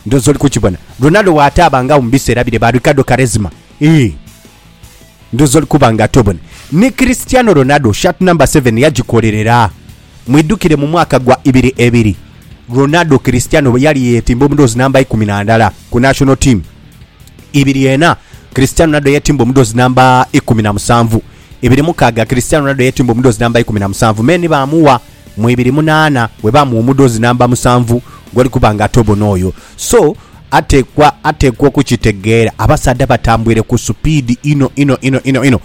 Ndhoozi oli kukibona. Ronaldo waataaba nga mu biseera bire ba Ricardo Quaresma. Ii. Ndhoozi oli kuba nga tobona. Ni Cristiano Ronaldo shirt number seven yagikolerera. Mwidhukire mu mwaka gwa ibiri ebiri, Ronaldo Cristiano bwe yali yeetimba omudhoozi namba ikumi na ndala ku national team. Ibiri ena, Cristiano Ronaldo yeetimba omudhoozi namba ikumi na musanvu. Ibiri mukaaga, Cristiano Ronaldo yeetimba omudhoozi namba ikumi na musanvu me ni baamuwa mu ibiri munaana we baamuwa omudhoozi namba musanvu gwali kuba nga ate obona oyo. So, ateekwa, ateekwa okukitegeera. Abasaadha batambwire ku supiidi inho, inho, inho, inho, inho.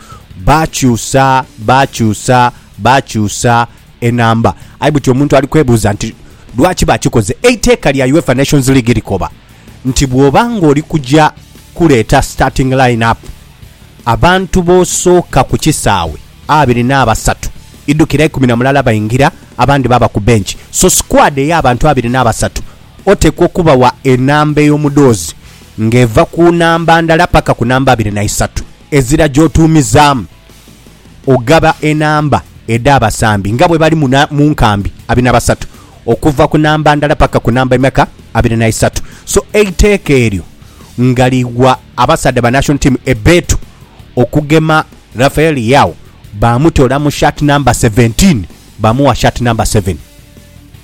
Baakyusa, baakyusa, baakyusa enamba. Aye buti omuntu ali kwebuuza nti, Lwaki baakikoze? Eiteeka lya UEFA Nations League likoba nti bw'oba ng'oli kuja kuleeta starting line-up, Abantu b'osooka ku kisaawe abiri n'abasatu, idhukira ikumi na mulala baingira, abandi baaba ku bench. So squad ey'abantu abiri n'abasatu oteekwa okubawa enamba ey'omudhoozi ng'eva ku namba ndala paka ku namba abiri na isatu ezira gy'otuumizaamu. Ogaba enamba edha basambi nga bwe bali mu nkambi abiri na basatu okuva ku namba ndala paka ku namba emeka abiri na isatu so eiteeka eryo nga ligwa abasaadha ba national team ebbeetu okugema Rafael Leao bamutola mu shirt number seventeen bamuwa shirt number seven.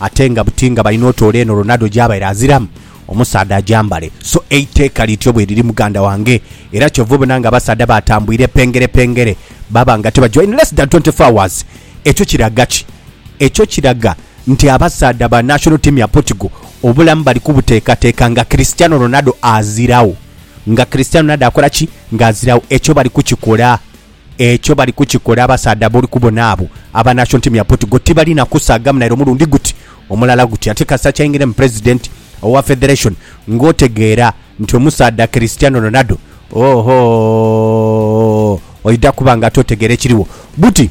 Ate nga buti nga balina otoola eno Ronaldo gyabaire aziramu omusaadha agyambale. So eiteeka lityo bweriri muganda wange era kyova obona nga abasaadha batambwire pengere pengere baba nga tibagyawo in less than twenty four hours. Ekyo kiraga ki? Ekyo kiraga nti abasaadha ba national team ya Portugal obulamu bali kubuteekateeka nga Cristiano Ronaldo azirawo. Nga Cristiano Ronaldo akola ki? Nga azirawo. Ekyo bali kukikola. Ekyo bali kukikola abasaadha b'oli kubona abo aba National Team ya Portugal tibalina kusaagamu naire omulundi guti omulala guti. Ate kasita kyaingiramu President owa Federation ng'otegeera nti omusaadha Cristiano Ronaldo, oohoo, oidha kuba ng'ate otegeera ekiriwo. Buti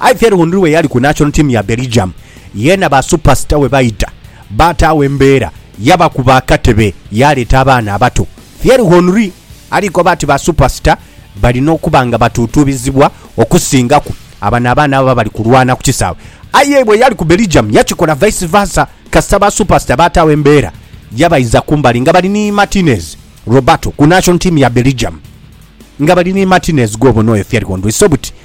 Aye Thierry Henry bwe yali ku national team ya Belgium, yeena ba superstar we baidha baataagho embeera yabakuba akatebe yaaleeta abaana abato. Thierry Henry ali koba ati ba superstar balina okuba nga batuutuubizibwa okusingaku abano abaana ababa bali kulwana ku kisaawe. Aye bwe yali ku Belgium yakikola vice versa kasita ba superstar baataagho embeera yabaidha kumbali nga bali ni Martinez, Roberto ku national team ya Belgium nga bali ni Martinez gwobona oyo Thierry Henry so buti